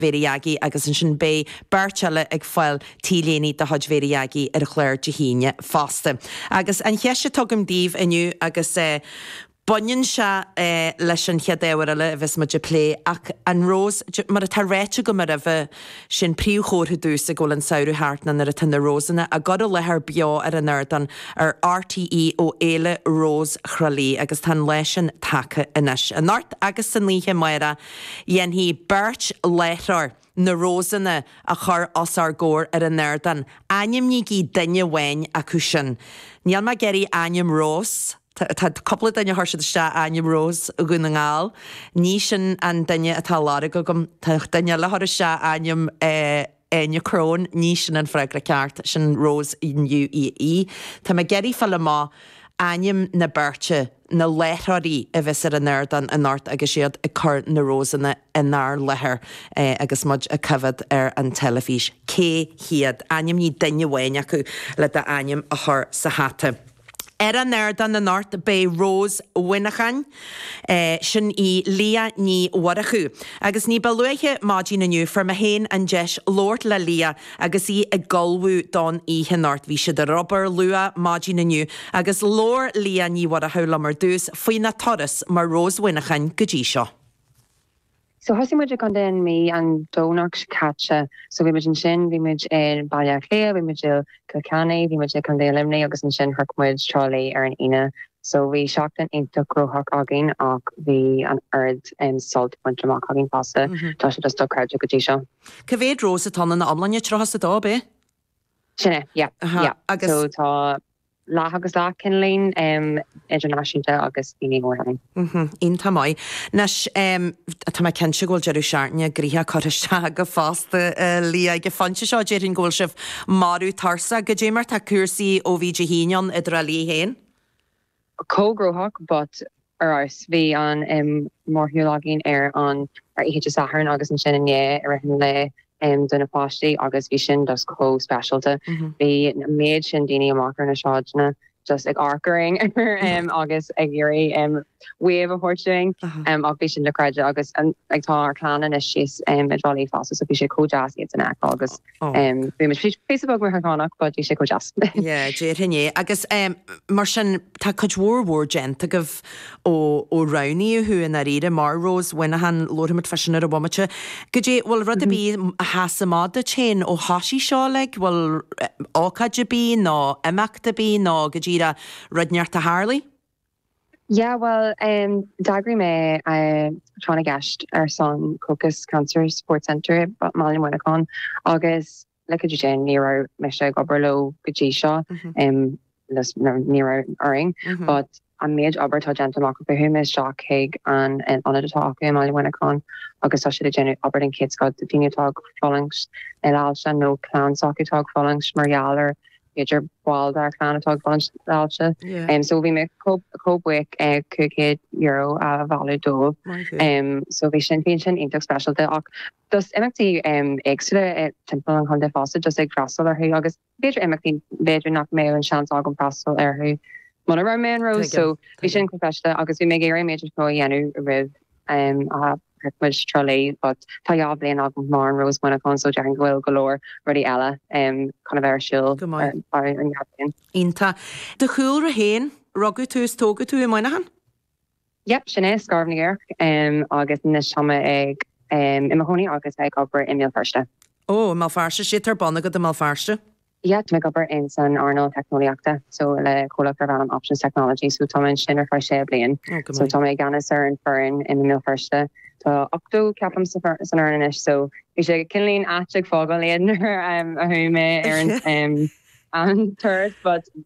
Mhéire Dheaghii agus ansin beidh beirt eile ag fáil t-léiní de chuid Mhéire Dheaghii ar an chlár Dé hAoine fosta. Agus an cheist atá agam daoibh inniu agus baineann sé leis an chéad ábhar eile a bheas muid ag plé ach an Rós, mar atá ráite agam aroimhe, sin príomhchomhartha domhsa go bhfuil an Samhradh thart ná nuair atá na Rósanna á gcur i láthair beo ar an ardán ar RTÉ ó Fhéile Rós Thrá Lí agus tá an lá sin tagtha anois. Anocht agus san oíche amárach, Déanfaidh beirt láithreoir na Rósanna a chur os ár gcomhair ar an ardán. Ainmnígí duine amháin acu sin. Níl mé ag iarraidh ainm Rós, tá cúpla duine a chuir siad isteach ainm Rós Dhún na nGall, ní sin an duine atá á lorg agam, tá duine eile ag cur isteach ainm eh, Áine Crón, Ní sin an freagra ceart, sin Rose UAE. Tá mé ag iarraidh fáil amach ainm na beirte, na láithreoirí a bheas ar an ardán anocht agus iad ag cur na Rósanna inár láthair agus muid ag coimhéad ar an teilifís. Cé hiad? Ainmnigh duine amháin acu le d'ainm a chur sa hata. Ar an ardán anocht beidh Rose Mhuineacháin, sin í Liadh Ní Mhurchú, agus ní ba luaithe maidin inniu fuair mé féin an deis labhairt le Liadh agus í ag ullmhú don oíche anocht. Bhí siad ar obair luath maidin inniu agus labhair Liadh Ní Mhurchú liom ar dtús faoina turas mar Rose Mhuineacháin go dtí seo. So thosaigh muid i gContae na Mí an Domhnach seo caite. So bhí muid ansin, bhí muid i mBaile Átha Cliath, bhí muid i gCill Chainnigh, bhí muid i gContae Luimnigh agus ansin shroich muid Trá Lí ar an Aoine. So bhí seachtain iontach gnóthach againn ach bhí an oiread sult bainte amach againn fosta, tá sé just dochreidte go dtí seo. Cé mhéad Rose atá ann ina iomláine? Tríocha is a dó, ab é? Sin é, yeah, yeah. So tá. leath agus leath cineál, idirnáisiúnta agus daoine ó Éirinn. Iontach maith. Anois, tá mé cinnte go bhfuil deireadh seachtaine gnóthach curtha isteach agaibh fosta a Liadh ag an phointe seo. Déarfainn go bhfuil sibh marbh tuirseach. Go deimhin mar tá cúrsaí ó bhí Dé hAoine ann i dTrá Lí féin chomh gnóthach but Arís, bhí an mórshiúl againn ar an oíche Dé Sathairn agus ansin inné i rith an lae do na páistí agus bhí sin just chomh speisialta. Bhí an méid sin daoine amach ar na sráideanna just ag amharc orainn agus ag iarraidh wave a thabhairt dúinn ach bhí sin dochreidte agus tá ár gclann anois síos i dTrá Lí fosta so bhí sé chomh deas iadsan a fheiceáil agus Déarfainn é. Agus mar sin, tá cuid mhór mhór déanta agaibh ó roghnaíodh thú, i ndáiríre, mar Rose Mhuineacháin, labharfaimid fá sin ar an bhomaite. Goidé, bhfuil rud ar bith a sheas amach duit féin ó thoisigh seo, like, bhfuil ócáid ar bith nó imeacht ar bith nó go díreach rud inteacht a tharlaigh? Yeah well em d'eagraigh mé tráth na gceist ar son Crocus Cancer Support Centre i mBaile Mhuineacháin agus like I didn't ní raibh mise ag obair leo go dtí seo em just no ní raibh a fhios agam but an méid obair atá déanta chuaigh mé amach chuaigh mé isteach chuig an ionad atá acu i mBaile Mhuineacháin agus tá siad ag déanamh obair den chéad scoth do dhaoine atá ag fulaingt le hailse nó clann s'acu atá ag fulaingt mar gheall ar b'fhéidir ball dá gclann atá ag fulaingt le hailse so bhí mé chomh buíoch €500 a bhailiú dóibh so bhí sin bhí sin iontach speisialta ach just imeachtaí éagsúla timpeall an chontae fosta just ag freastal orthu agus b'fhéidir imeachtaí b'fhéidir nach mbeadh an seans agam freastal orthu muna raibh mé an Rós so bhí sin chomh speisialta agus bhí mé ag iarraidh an méid is mó a dhéanamh roimh a chuaigh muid go Trá Lí, but tá dhá bhliain agam mar an Rós Muineacháin so déarfainn go bhfuil go leor rudaí eile chun a bheith ar siúl Go maith. ar feadh an dhá bhliain. Iontach. Do chúlra féin, rugadh tú is tógadh tú i Muineachán? Yep, sin é, Scairbh na gCaorach agus anois tá mé ag i mo chónaí agus ag obair i mBéal Feirste. Ó, i mBéal Feirste, is céard atá ar bun agat i mBéal Feirste? Yeah tá mé ag obair san earnáil teicneolaíochta so le comhlacht darb ainm Options Technology so tá mé ansin ar feadh sé bliain. Oh, go So maith. tá mé i gceannas ar an foireann i mBéal Feirste. Tá ochtó, ceapaim, sa for- san fhoireann anois so bhí sé cineálín ait ag fágáil iad nuair, em, a chuaigh mé ar an, em, an turas but,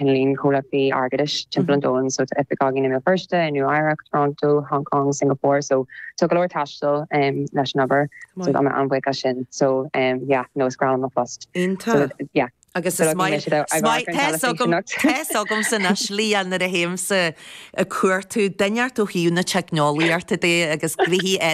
Penlyn, comhlachtaí airgeadais timpeall an domhain, so tá oifig againn i mBéal Feirste, i Nua Eabhrac, Toronto, Hong Kong, Singapore, so tá go leor taistil leis an obair, so tá mé an-bhuíoch as sin, so yeah, no, is breá liom mo phost. Iontach! So yeah. Agus is maith liom, is maith, tá fhios agam, tá fhios agamsa anois Leanne nuair a théimse ag cuartú deacracht ó thaobh na teicneolaíochta, agus grifhí air.